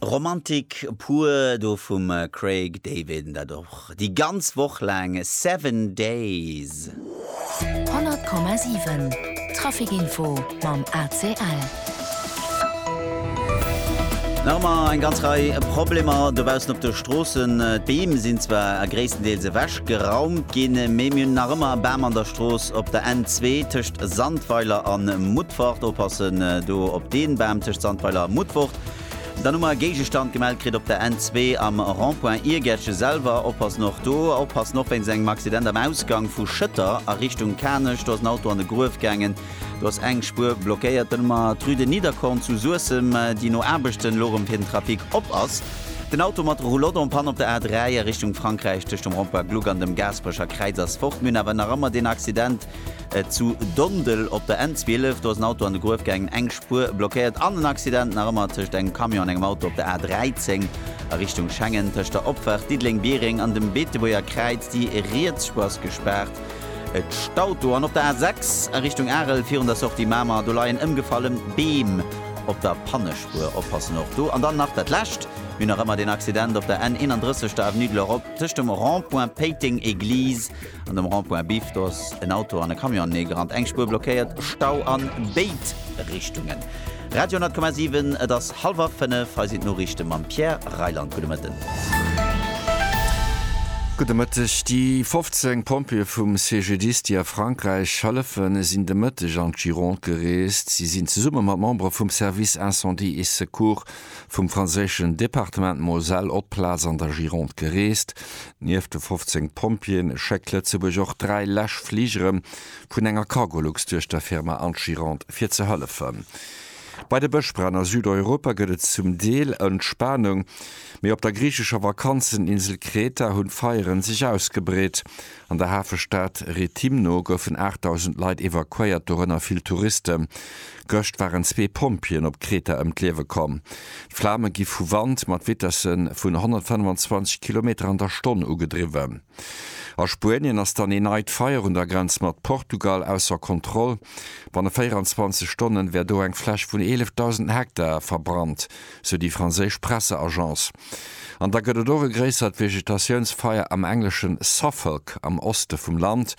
Romantik pur do vum Craig David an dat och déi ganz Woch laang, Seven Days. 100,7 Traficinfo mam ACL. Nach ëmmer eng ganz Rei Problemer dobaussen op de Stroossen. D'Beem sinn zwar gréisstendeels ewech. geraumt ginn, mee mir hunn nach ëmmer e Bam an der Strooss op der N-zwee tëscht Sandweiler a Mutfort. Oppassen do op dee Bam tëscht Sandweiler a Mutfort. Dann hu mer e Géigestand gemellt kritt op der N-zwee am Rond-point Iergertje selwer. Oppassen och do. Oppassen och wéinst engem Accident am Ausgang vu Schëtter a Richtung Kanech. Do ass en Auto an de Gruef gaangen, do ass eng Spuer blockéiert. Dann hu mer d'Rue de Niederkorn zu Suessem, déi no Aarbechten elo erëm fir den Trafic op ass. Den Auto mat Roulotte en panne op der A3 a Richtung Frankräich tëscht dem Rond-Point Gluck an dem Gaasperecher Kräiz ass fort. Mir hunn awer nach ëmmer deen Accident zu Dondel op der N12. Do ass en Auto an de Gruef gaangen, eng Spuer blockéiert. An en Accident nach ëmmer tëscht engem Camion an engem Auto op der A13 a Richtung Schengen. Tëscht der Opfaart Diddeleng-Biereng an dem Beetebuerger Kräiz, déi riets Spuer ass gespaart, et staut do. An op der A6 a Richtung Arel virun der Sortie Mamer, do leien ëmgefallen Beem op der Pannespuer. Hoer oppassen och do. An dann nach dat lescht, Mir hunn nach ëmmer deen Accident op der N 31, der Avenue de l'Europe, tëscht dem Rond-point Péiteng Église an dem Rond-point Biff. Do ass en Auto an e Camion aneegerannt, eng Spuer blockéiert, Stau a béid Richtungen. Radio 10,7, Et ass hallwer fënnef, hei sinn d'Noriichte mam Pierre Reyland. Gudde Mëtten. Gudde Mëtteg. Déi 15 Pompjeeë vum CGDIS, déi a Frankräich hëllefen, sinn de Mëtteg an d'Gironde gereest. Si sinn zesumme mat Membere vum Service Incendie et Secours vum franséischen Departement Moselle op d'Plaz an der Gironde gereest. Nieft de 15 Pompjeeën schéckt Lëtzebuerg och dräi Läschfligere vun enger Cargolux duerch der Firma an d'Gironde, fir ze hëllefen. Bei de Bëschbränn a Südeuropa gëtt et zum Deel Entspanung, mee op der griichescher Vakanzeninsel Kreta hunn d'Feieren sech ausgebreet. An der Hafestad Rethymno goufen 8.000 Leit evakuéiert, dorënner vill Touristen. Gëscht waren zwee Pompjeeën op Kreta ëm d'Liewe komm. D'Flame gi vu Wand mat Vitesse vun 125 Kilometer an der Stonn ugedriwwen. A Spuenien ass dann ee neit Feier un der Grenz mat Portugal ausser Kontroll. Banne 24 Stonnen wär do eng Fläch vun 11.000 Hektar verbrannt, sou déi franséisch Presseagence. An da gëtt et och e gréissert Vegetatiounsfeier am engleschen Suffolk am Oste vum Land.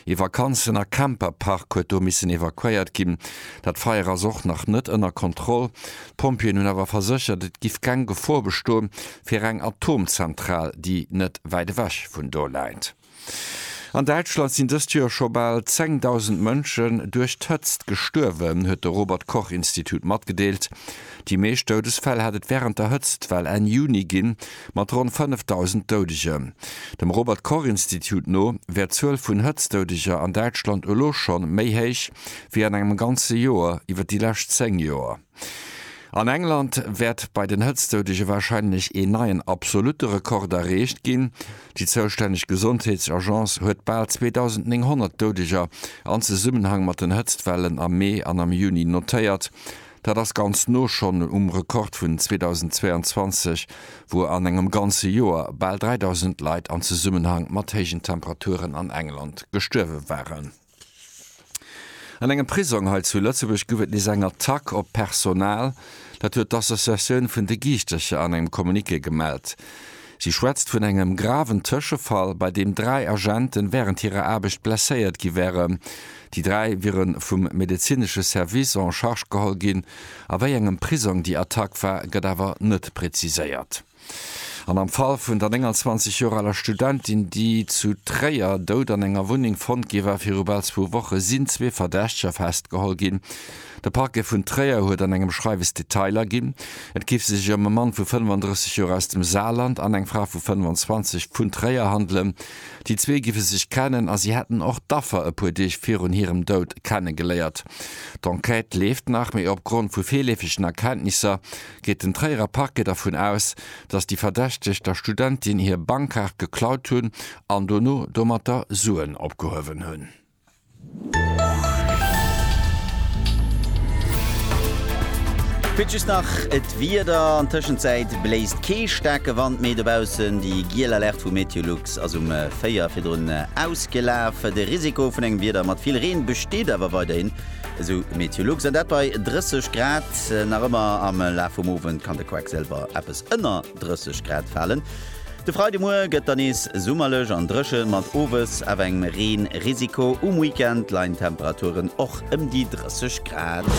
Ee Vakanzen a Camperpark huet do missen evakuéiert ginn. Dat Feier ass och nach net ënner Kontroll. D'Pompjeeën hunn awer verséchert, et giff keng Gefor bestoen, fir eng Atomzentral, déi net wäit ewech vun do läit. An Däitschland sinn dëst Joer scho bal 10.000 Mënschen duerch d'Hëtzt gestuerwen, huet de Robert-Koch-Institut matgedeelt. Déi meescht Doudesfäll hätt et wärend der Hëtztwell Enn Juni ginn, mat ronn 5.000 Doudegen. Dem Robert-Koch-Institut no wär d'Zuel vun Hëtztdoudeger an Däitschland elo scho méi héich wéi an engem ganze Joer iwwer déi lescht 10 Joer. An England wäert bei den Hëtztzoudege warscheinlech een neien absolutte Rekord erreecht ginn. Déi zoustänneg Gesondheetsagence huet bal 2.900 Doudeger an Zesummenhang mat den Hëtztwellen am Mee an am Juni notéiert. Dat ass ganz no schonn um Rekord vun 2022, wou an engem ganze Joer bal 3.000 Leit an Zesummenhang mat héijen Temperaturen an England gestuerwe waren. An engem Prisong hei zu Lëtzebuerg gouf et nees eng Attack op d'Personal. Dat huet d'Associatioun vun de Giischtercher an engem Communiqué gemellt. Si schwätzt vun engem graven Tëschefall, bei deem dräi Agenten wärend hirer Aarbecht blesséiert gi wären. Déi dräi wiere vum medezinesche Service en charge geholl ginn. A wéi engem Prisong déi Attack war, gëtt awer net preziséiert. An am Fall vun der 29 Joer aler Studentin, déi zu Tréier dout an enger Wunneng fonnt gi war, viru bal zwou Woche sinn zwee Verdächteger festgeholl ginn. De Parquet vun Tréier huet an engem Schreiwes Detailer ginn. Et géif sech ëm e Mann vu 35 Joer aus dem Saarland an eng Fra vu 25 vun Tréier handelen. Déi zwee giffe sech kennen a si hätten och d'Affer e puer Deeg virun hirem Dout kennegeléiert. D'Enquête leeft nach, mee opgrond vu virleefegen Erkenntnisser, geet den Tréierer Parquet dervun aus, datt déi Verdächteg der Studentin hir Bankkaart geklaut hunn an dono domatter Suen opgehuewen hunn. Kuerz just nach d'Wieder, An Tëschenzäit bléist kee staarke Wand méi dobaussen. Déi giel Alerte vu Meteolux ass um 4 virdrun ausgelaf. De Risiko vun engem Wieder mat vill Reen besteet awer weiderhin. Esou Meteolux, an dat bei 30 Grad. Nach ëmmer am Laf vum Owend kann de Quacksilver eppes ënner 30 Grad falen. De Freidemuer gëtt dann nees summerlech an dréchen, mat owes awer engem Reen-Risiko. Um Weekend leien d'Temperaturen och ëm déi 30 Grad.